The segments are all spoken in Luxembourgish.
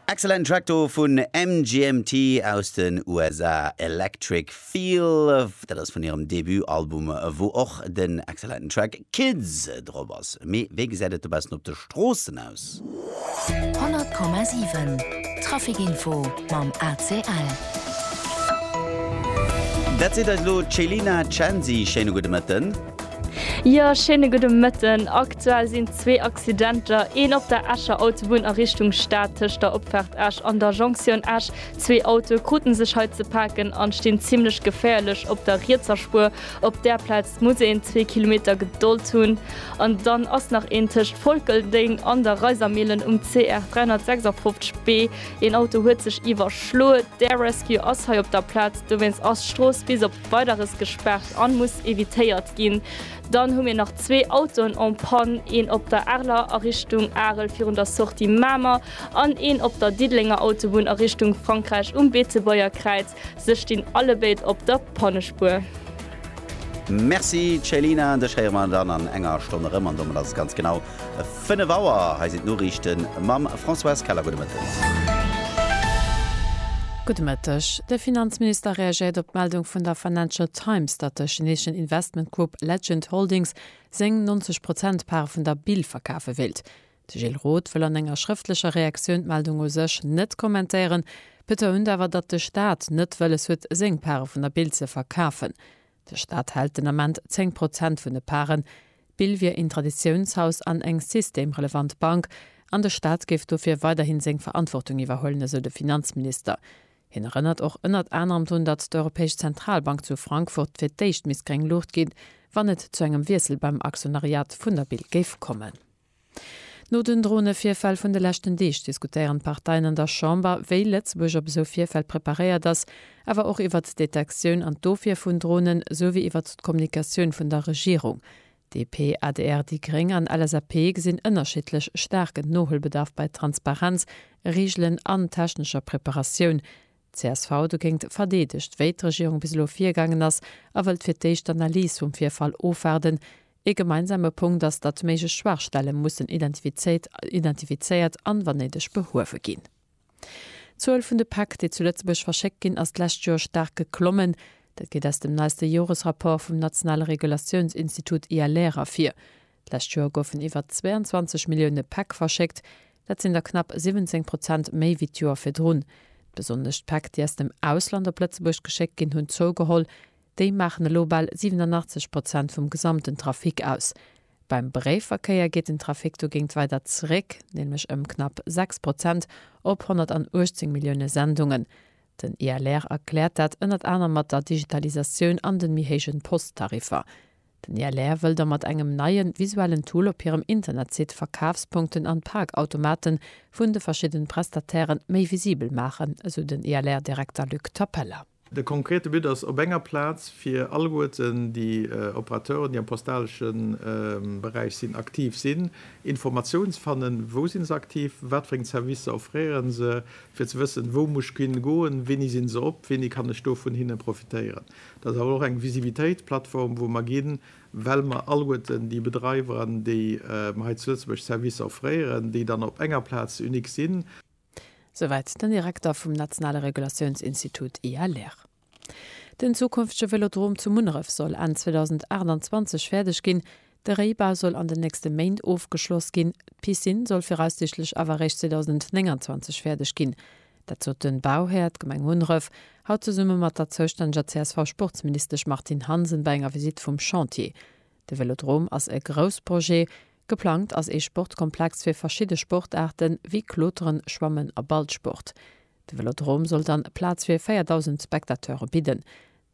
Excellent Track do vun MGMT aus den USA, Electric Feel. Dat ass vun hirem Debutalbum, wou och den excellenten Track Kids drop ass. Mee wéi gesäit et do bessen op de Stroossen aus? 100,7 Trafic Info mam ACL. Dat seet eis elo d'Chelina Chancy. Schéine gudde Mëtten. Jo schéine gudde Mëtten. Aktuell sinn zwee Accidenter, een op der Escher Autobunn a Richtung Stad tëscht der Opfaart Esch an der Jonktioun Esch. Zwee Autoe kruten sech hei ze paken an stinn zimmlech geféierlech op der rietser Spuer. Op där Plaz muss een zwee Kilometer Gedold hunn. An dann ass nach een tëscht Volkeldeng an der Reisermillen um CR 356 B. Een Auto huet sech iwwerschloe. D'Air Rescue ass hei op der Plaz, dowéinst ass d'Strooss bis op. weideres gespaart an muss evitéiert gin. Dann hu mir nach zwee Autoen en panne, een op der Arler a Richtung Arel virun der Sortie Mamer an een op der Diddelenger Autobunn a Richtung Frankräich um Beetebuerger Kräiz. Se stin allebéid op der Pannespuer. Merci Céline, dech héiere mer dann an enger Stonn erëm an domat ass et ganz genau 5 Auer, hei sinn d'Noriichte mam Françoise Keller. Gudde Mëtteg. Gudde Mëtteg. De Finanzminister reagéiert op d'Meldung vun der Financial Times, datt de chineeschen Investmentgrupp Legend Holdings seng 90 Prozent Part vun der Bill verkafe wéilt. De Gilles Roth wëll an enger schrëftlecher Reaktioun d'Meldung u sech net kommentéieren, betount awer, datt de Staat net wëlles huet, seng Pare vun der Bill ze verkafen. De Staat hält den Ament 10 Prozent vun de Paren. D'Bill wier een Traditiounshaus an eng systemrelevant Bank, an de Staat géif dofir weiderhin seng Verantwortung iwwerhuelen, esou de Finanzminister. Hien erënnert och ënnert anerem drun, datt d'Europäesch Zentralbank zu Frankfurt fir d'éischt misst gréng Luucht ginn, wann et zu engem Wiessel beim Aktionariat vun der Bill géif kommen. No den Dronevirfäll vun de leschten Deeg diskutéieren d'Parteien an der Chamber, wéi Lëtzebuerg op esou Virfäll preparéiert ass, awer och iwwert d'Detektioun an d'Ofwier vun Dronen, sou wéi iwwert d'Kommunikatioun vun der Regierung. DP, adr, déi gréng an LSAP gesinn ënnerschiddlech staarken Nohuelbedarf bei Transparenz, Reegelen an technescher Preparatioun. csv dogéint verdeedegt, wéi d'Regierung bis elo virgaangen ass, a wëllt fir d'éischt d'Analys vum Virfall ofwaarden. Ee gemeinsame Punkt ass, datt méiglech Schwaachstelle mussen identifizéiert an, wann néideg, behuewe ginn. D'Zuel vun de Päck, déi zu Lëtzebuerg verschéckt ginn, ass d'lescht Joer staark geklommen. Dat geet aus dem neiste Joresrapport vum nationale Regulatiounsinstitut ILR ervir. D'lescht Joer goufen iwwer 22 Millioune Päck verschéckt, dat sinn der knapp 17 Prozent méi wéi d'Joer virdrun. Besonnesch d'Päck, déi aus dem Ausland op Lëtzebuerg geschéckt ginn, hunn zougeholl. Déi maachen elo bal 87 Prozent vum gesamten Trafic aus. Beim Bréifverkéier geet den Trafic dogéint weider zeréck, nämlech ëm knapp 6 Prozent op 118 Millioune Sendungen. Den ILR erkläert dat ënnert anerem mat der Digitalisatioun an den méi héijen Posttariffer. Den ILR wëll da mat engem neien visuellen Tool op hirem Internetsite Verkafspunkten an Parkautomaten vun de verschidden Prestatairen méi visibel maachen, esou den ILR-Direkter Luc Tapella. De konkrete But ass, op enger Plaz fir alleguerten déi Operateuren, déi am postalesche Beräich sinn, aktiv sinn, Information ze fannen, wou sinn se aktiv, wat fir eng Servicer offréieren se, fir ze wëssen, wou muss ech hin goen, wéini sinn se op, wéini kann ech do vun hinne profitéieren. Dat ass awer och eng Visibilitéitsplattform, wou mer ginn, well mer alleguerten déi Bedreiwer, déi mer hei zu Lëtzebuerg Servicer offréieren, déi dann op enger Plaz unique sinn. Souwäit den Direkter vum nationale Regulatiounsinstitut ILR. Den zukünftege Vélodrom zu Munneref soll Enn 2028 fäerdeg ginn. De Réibau soll an den nächste Méint ofgeschloss ginn, d'Piscine soll viraussiichtlech awer eréischt 2029 fäerdeg ginn. Dat sot de Bauhär, d'Gemeng Munneref, haut zesumme mat der zoustänneger CSV-Sportsministesch Martine Hansen bei enger Visitt vum Chantier. De Vélodrom ass e grouss Projet. Geplangt ass ee Sportkomplex fir verschidde Sportaarte wéi Kloteren, Schwammen a Ballsport. De Vélodrom soll dann Plaz fir 4.000 Spectateure bidden.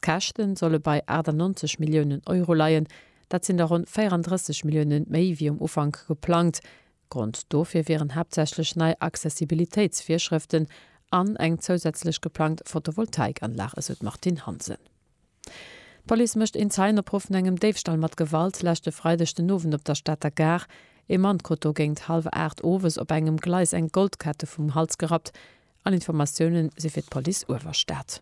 D'Käschte solle bei 98 Milliounen Euro leien, dat sinn der ronn 34 Millioune méi wéi um Ufank geplangt. Grond dofir wieren haaptsächlech nei Accessibilitéitsvirschrëften an eng zousätzlech geplangt Photovoltaikanlag, esou d'Martine Hansen. D'Police mécht een Zeienopruff vun engem Déifstall mat Gewalt leschte Freideg den Owend op der Stater Gare. Ee Mann krut do géint hallwer 8 owes op engem Gleis eng Goldkette vum Hals gerappt. All Informatioune si fir d'Police Uewerstad.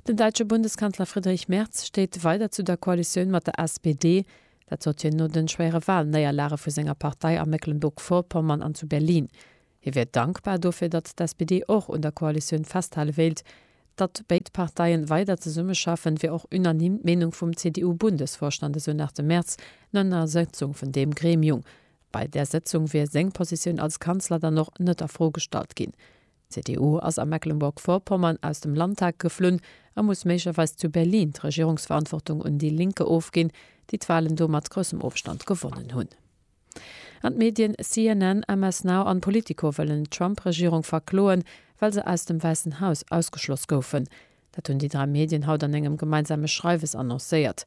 Den däitsche Bundeskanzler Friedrich Merz steet weider zu der Koalitioun mat der SPD. Dat sot hien no de schwéiere Walnéierlage vu senger Partei a Mecklenburg-Vorpommern an zu Berlin. Hie wier dankbar dofir, datt d'SPD och un der Koalitioun festhale wéilt. Datt béid Parteien weider zesummeschaffen, wier och unanime d'Meenung vum CDU-Bundesvorstand, esou nach de Merz no enger Sëtzung vun deem Gremiung. Bei där Sëtzung wier seng Positioun als Kanzler dann och net a Fro gestallt ginn. D'CDU ass a Mecklenburg-Vorpommern aus dem Landtag geflunn a muss méiglecherweis zu Berlin d'Regierungsverantwortung un Die Linke ofginn, déi d'Wahlen do mat groussem Ofstand gewonnen hunn. An d'Medien CNN, MS Now an Politico wëllen d'Trump-Regierung verkloen, well se aus dem Wäissen Haus ausgeschloss goufen. Dat hunn déi dräi Medien haut an engem gemeinsame Schreiwes annoncéiert.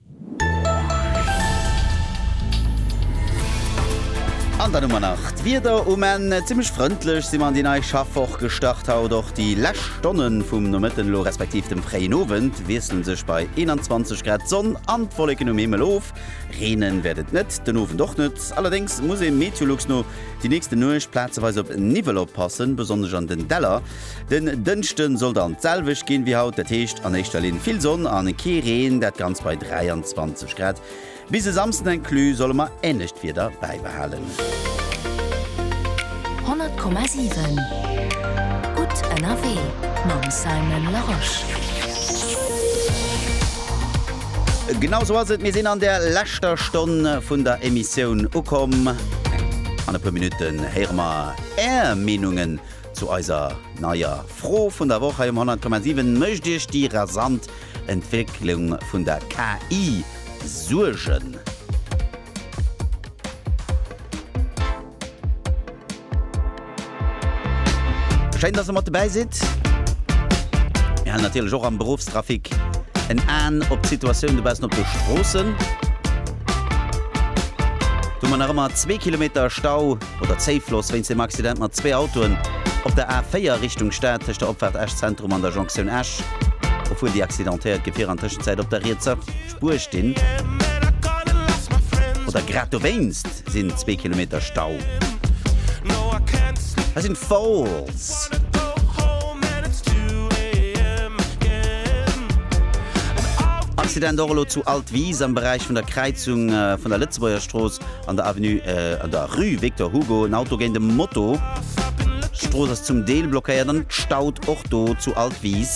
An dann hu mer nach d'Wieder um Enn. Zimmlech frëndlech si mer an déi nei Schaffwoch gestart haut. Och déi lescht Stonne vum Nomëtten elo respektiv dem fréien Owend wiessle sech bei 21 Grad d'Sonn an d'Wolleken um Himmel of. Reenen wäert et net, den Owend och net. Allerdéngs muss ee Meteolux no déi nächste Nuecht plazeweis op Niwwel oppassen, besonnesch an den Däller. Den Dënschden soll dann d'selwecht ginn wéi haut, dat heescht an éischter Linn vill Sonn an kee Reen, dat Ganzt bei 23 Grad. Bis e Samsden inclus solle mer änlecht Wieder bäibehalen. 100,7 Gutt ënnerwee mam Simon Larosche. Genau esou ass et, mir sinn an der leschter Stonn vun der Emissioun ukomm. An e puer Minutten héiere mer Är Meenungen. Zu eiser neier Fro vun der Woch hei um 100,7, Mécht Iech déi rasant Entwécklung vun der KI Suergen? Schéin, dass Der mat dobäi sidd. Mir halen natierlech och am Beruffstrafic en Aen op d'Situatioun dobaussen op de Stroossen, wou mer nach ëmmer zwee Kilometer Stau, oder Zéifloss wéinst dem Accident mat zwee Autoen op der A4 Richtung Stad tëscht der Opfaart Esch-Zentrum an der Jonktioun Esch. Dofir di accidentéiert Gefierer an Tëschenzäit op der rietser Spuer stinn oder grad dowéinst sinn zwee Kilometer Stau. Hei sinn d'Falls. Accident och elo zu Altwis am Beräich vun der Kräizung vun der Lëtzebuerger Strooss. An der Avenue, an der Rue Victor Hugo en Auto géint e Moto. D'Strooss ass zum Deel blockéiert an d'Staut och do zu Altwis.